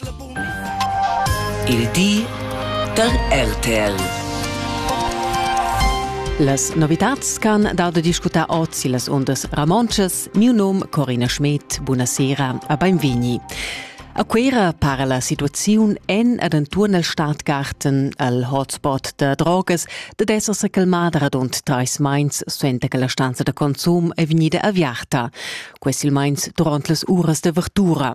Il di da RTL. Las novitads ch'han dau da discutar oz illas undas ramontschas, miu num Corina Schmidt, buna sera a beinvegni. A Cuera para la situaziun en ed enturn el Stadtgarten al hotspot da drogas da esser se calmada radund treis meins suenter che la stanza da consum è vegnida aviarta. quei silmeins duront las uras de verdura.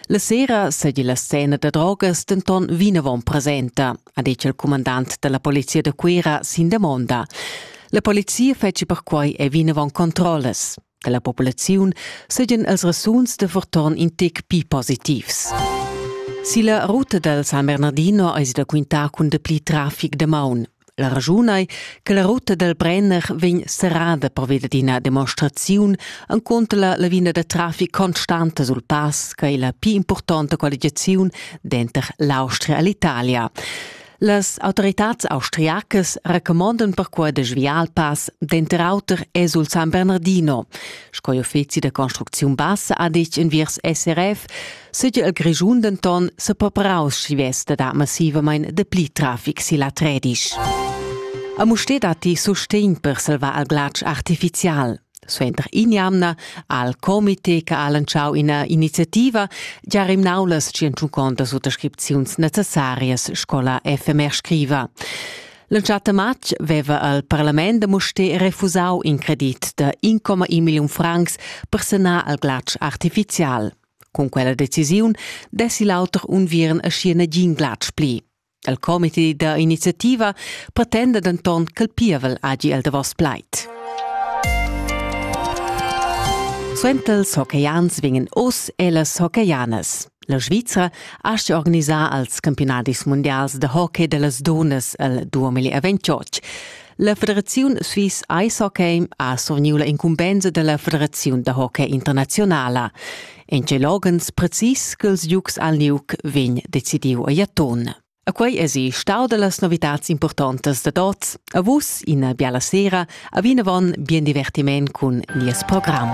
La sera seigi la scena da drogas denton vinavon presenta, ha detg il comandant dalla polizia da Cuera sin demonda. La polizia fetschi perquei e vinavon controllas. Dalla populaziun seigien els resuns de verton in tec pi positivs. Silla ruta dal San Bernardino eis da quintar cun dapli trafic de maun. La raschun ei che la ruta dal Brenner vegn serrada pervia d'ina demonstraziun enconter la lavina da traffic constanta sul pass che ei la pli impurtonta qualificaziun denter l'Austria e l'Italia. Las autoritads austriacas recomandan perquai da sviar il pass denter auter e sul San Bernardino. Sco uffizi da construcziun bassa ha detg enviers SRF Sigi el Grischun denton sepapraus schi vesta da massivamain dapli traffic silla Tredisch. A Musté datti sustegn per salvar al glatsch artificial. Suenter in'jamna al comité che ha lanciau ina iniziativa gia rimnau las tschentuconta suttascripziuns necessarias scola FMR scriva. L'entschatta matg veva al parlament da Musté refusau in credit da 1,1 milliun francs per sanar al glatsch artificial. Cun quella decisiun dessi l'auter unviern aschi nagin glatsch pli. Il comité da iniziativa pretenda denton ch'el pievel hagi el davos plaid. Suenter ils hockeyans vegnan oz e las hockeyans. La Svizra ha asti organisar als campionadis mundials de hockey dellas donas el 2028. La federaziun Swiss Ice Hockey ha surniu la incumbensa dalla federaziun da hockey internazionala. En tgei loghens precis ch'ils giugs al Nuc vegn decidiu a Jaton. A quei esi stau dallas novitads importantas da tots. A vus ina biala sera, a vinavon bien divertiment cun nies program.